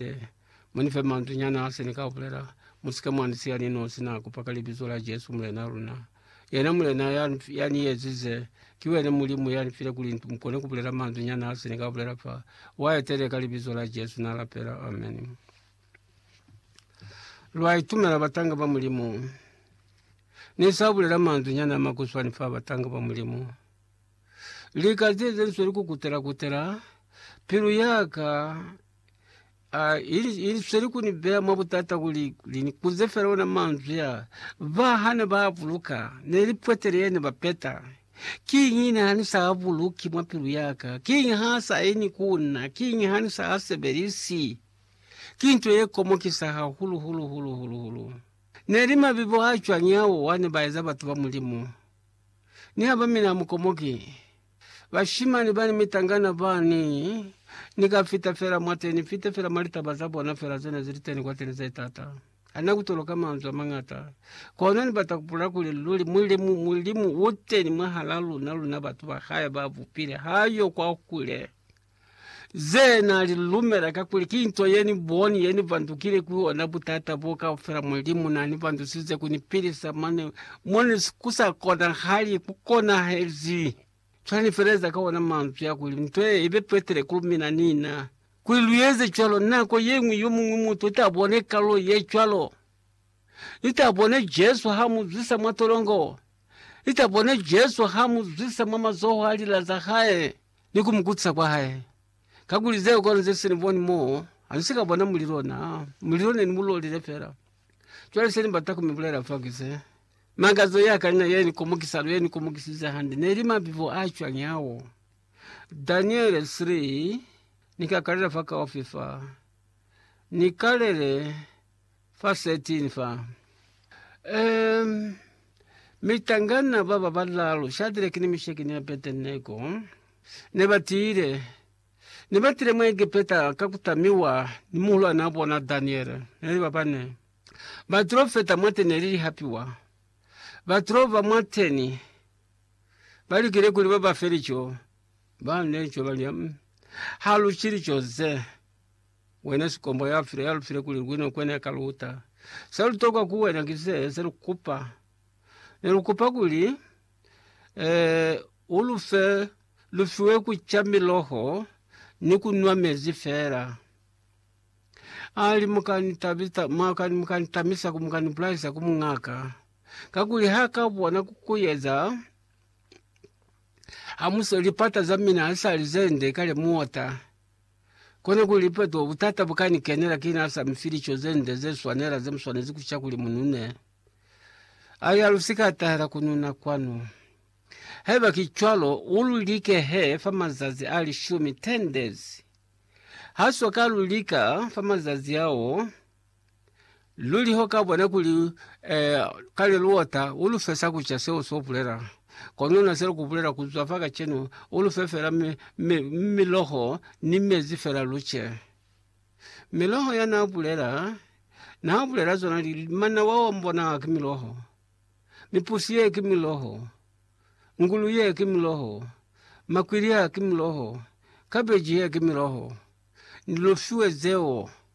Ee, mu ni fe manzwi nyana se ni ka bulela. Mu si ke mwa ni siya ni nosi na kupa ka Libizo la Jesu, Mulena luna. Yena Mulena ya, ya ni ezize. Ki wene Mulimu ya ni file kuli ni kone ku bulela manzwi nyana se ni ka bulela fa. Wa etele ka Libizo la Jesu, na lapela. Amen. Lwa itumela batanga ba Mulimu. Ni sa bulela manzwi nyana a makuswani fa batanga ba Mulimu. Lika ze ze nswe li kukutela kutela, pilu yaka Ah, ili, ili sweli ku ni beya mwa butata kuli, kuli ni kuze fela ona manzwi a. Ba hane ba buluka, ne li pwetele yene ba peta. Kiñi ne ha ni sa buluki mwa pilu ya ka? Kiñi ha sa ini ku na? Kiñi ha ni sa sebelisi? Ki nto ye komokisa hahulu, hulu, hulu, hulu, hulu. Ne li mabibo a cwañi ao wa ne ba eza batu ba Mulimu? Ni ha ba mina amukomoki. Bashimani bani mitangana bani Ni ka fita fela mwateni Ni fite fela mwa litaba za bona fela Ze ne zili teni kwateni ze tata Ha na kutoloka manzwi a mangata Kono ni bata kubulela kuli luli Mulimu, Mulimu uteni mwahala luna Luna batu ba Hae ba bupile Ha yo kwakule Ze na li lumela kakuli ki nto ye ni boni ye ni pandukile ku yona butata bo kaufela. Mulimu na ni pandusize ku ni pilisa mo ne, mo ne ku sa konahali ku konahezi. Cwale ni feleza ka ona manzwi a kuli, Nto ye i be petile ku mina ni na. Kuli lu eze cwalo, nako ye ñwi yo muñwi mutu ta bone kalulo ye cwalo. Ni ta bone Jesu ha mu zwisa mwa tolongo. Ni ta bone Jesu ha mu zwisa mwa mazoho a lila za hae. ni ku mu kutisa kwa hae, kakuli zeo kona ze se ni boni mo ha ni si ka bona mulilo. Na mulilo ne ni mu lolile fela. Cwale se ni bata ku mi bulela fa ki se, Makazo ya ka ni na ye ni komokisa luli, ye ni komokisize hande, ne li mabibo a cwañi ao? Daniele 3, Ni ka kalela fa kaufi fa, ni kalele Fa setini fa, um, mitangana ba ba balalu, Shadrake ni Misheki ni Abedenego, ne ba tile, ne ba tile mwa Egepeta ka ku tamiwa ni muhulwane wa bona Daniele. Ne li ba bane. Ba tulo feta mwate ne li lihapiwa. Ba tulo ba mwateni. Ba likile kuli ba ba fe lico. Ba ne lico ba li, um, ha lu ci lico ze. Wena sikombo ya file ya lufile kuli lwino kwene ka luta. Se lutokwa ku wena ki se se lukupa. Ne lukupa kuli eh, ulufe lufiwe kucha miloho ni kunwa mezi fela. Ali mukani tabita mwakani mukani tamisa ku mukani bulaisa ku mungaka kakuli ha ka bona kukuyeza hamuse lipata za mina hasali zende kale muota Kono kuli peto butata bukani kenela ki na sa mi fili co ze nde ze swanela ze mu swanezi ku ca kuli mu nune. A ya lu si ka tahela ku nuna kwanu. Haiba ki cwalo, u lu like he fa mazazi a lishumi, 10 days. Ha swa ka lu lika fa mazazi ao. Luli ho ka bona kuli eh, kale luota u lu fesa ku ca seo so bulela. Kono na sele ku bulela ku zwa fa kacenu, u lu fe fela mi, mi, miloho ni mezi fela lu ce. Miloho ya na bulela, na bulela zona li, manawa wa mbona ki miloho, mipusi ye ki miloho, ngulu ye ki miloho, makwili a ki miloho, kabeji ye ki miloho. Ni lu fiwe zeo.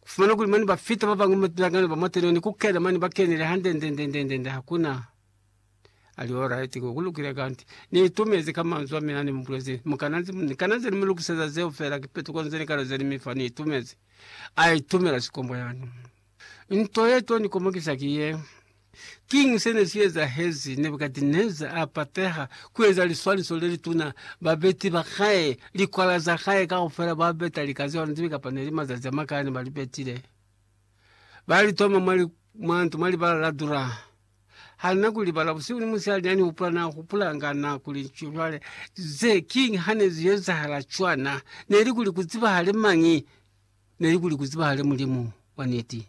Ku fumana kuli mane ba fita ba bañwi mwa tulangano ba mwa tenoni ku kena mane ba kenile hande nde nde nde nde nde ha kuna ali alright ko ku lukile kanti ni itumezi ka manzwi a mina ni mu bulezi mu kana nze ni kana nze ni mu lukiseza zeo fela ki petuko nze ni kalo ze ni mi fa ni itumezi a itumela sikombo yani nto ye to ni komokisa ki ye Kiñi se ne si ezahezi Nebukadineza a pateha ku eza liswaniso le lituna? Babeti ba hae, likwala za hae kaufela, ba beta lika zeo ne zibe kapa ne li mazazi a makaa ne ba li betile, ba li toma mwa ntu mwa libala la dura. Ha na ku libala busihu ni musihali, n'a ni hupula, n'a hupulanga, n'a kuli, Cwale, ze kiñi ha ne zi ezahala cwana? Ne li kuli ku zibahale mañi? Ne li kuli ku zibahale Mulimu wa niti.